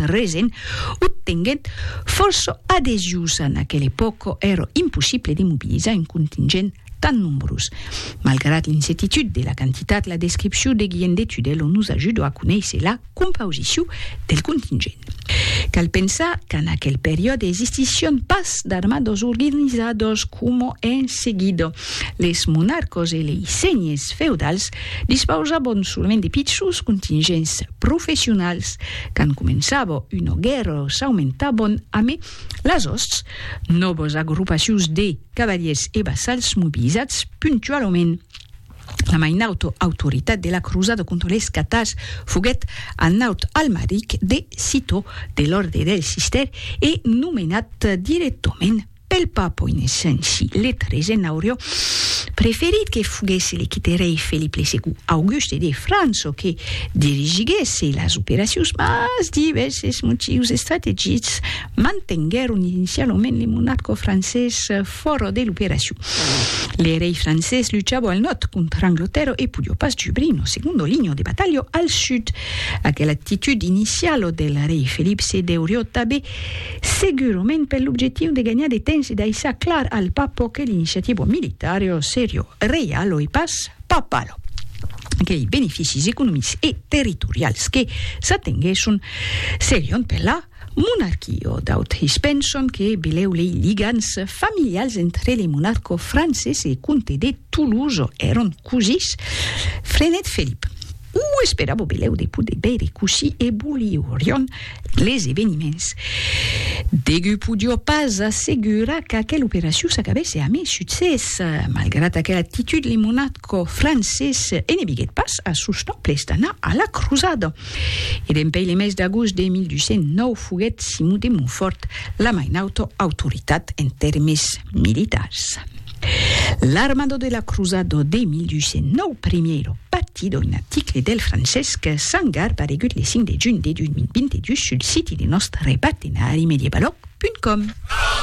Resen obtenguèt fòrça adesius. En aquela epòca èra impossible de mobilizar un contingent tan nombrós. Malgrat l'incetitud de la quantitat, la descripcion de Guillem de Tudèlo nos ajuda a conéisser la compausicion del contingent. Cal pensar qu'en aquel periòde existissián pas d'armadas organizadas coma en seguida. Les monarcas e lei senhers feudals Dispausabon solament de pichons contingents professionals. Quand començava una guèrra s'aumentabon a mai las òsts, nòvas agrupacions de cavaliers e vassals mobilizats puntualament. La mai nauta autoritat de la crosada contra les catars foguèt Arnaut Almaric de Citeaux, de l'òrdre del Cistèr e nomenat directament Pel papo Innocenci XIII n'aurió preferit que foguèsse le quite rei Felip le Segond Auguste de França que dirigiguèsse las operacions mas divèrses motius estrategics mantenguèron inicialament le monarca francés fòra de l'operacion. Le rei francés luchava al nòrd contra Anglatèrra e podió pas jubrir una segonda linha de batalha al sud. Aquela actitud iniciala del rei Felip se deurió tanben Segurament per l'objectiu de ganhar de temps e d'aissar clar al Papo que l'iniciativa militar e o seriò reial oi pas papal qu'ei beneficis economics e territorials que s'atenguèsson serion per la monarquia. D'autres penson que belèu lei ligams familials entre le monarca francés e comte de Toulouse èron cosís. Freinet Felip. O esperavo belèu de poder veire cossí evoluirion les eveniments. Degut podio pas assegurar qu'aquela operacion s'acabèsse amé succès. Malgrat aquela actitud le monarco francés e ne viguèt pas a sos nòbles d'anar a la crosada. E dempèi le mes d'agost de 1209 foguèt Simon de Montfòrt la mai nauta autoritat en tèrmes militars. L'armado de la cruzado de 1209 primiero patí d'un aticle del Francesc Sangar paregut le 5 de junh de 2022 sul siti de nòst repatenari medievalòg.com.